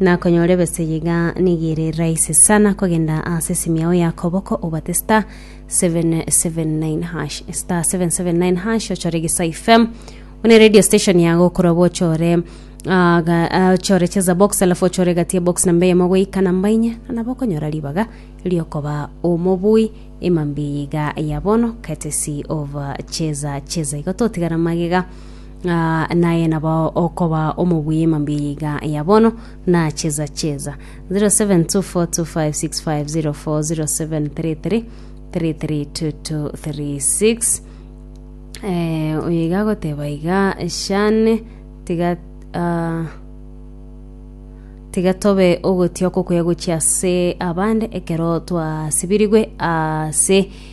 Nakonyora ebesa eye iga nigo ere rahisi sana kogenda ase esimu yao ya koboko obate star 779 hash star 779 hash ochore gisa fm one radio station yago okorwa bo ochore ah, ga- ah, ochore cheza box alafu ochore gati ya box namba eyemo goika namba inye na bokonyora ribaga riokoba omobui emambi eye iga ya bono courtesy of ah, cheza cheza igo totigara magega Ng'a naye nabo okoba omobui emambia yiga ya bono na cheza cheza 072425650407332236 eh, oyo iga agoteba iga shane tiga ah, tiga tobe ogotioka okuya gochia ase abande ekero twasibirigwe ase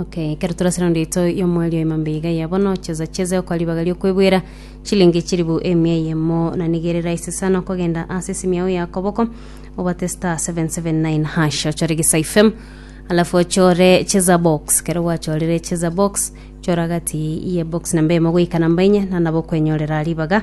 Okay, ekero torase raundi yaito ya omweri oima mbe iga ya bono, cheza cheza okoa ribaga riokwebwera chilingi chiribu emia eyemo na nigo ere rahisi sana okogenda ase esimi yao ya koboko obate star 779 hash ochore Gisai FM alafu ochore cheza box kero gwachorire cheza box chora gati ye box namba emo goika namba enye na nabo okwenyorera ribaga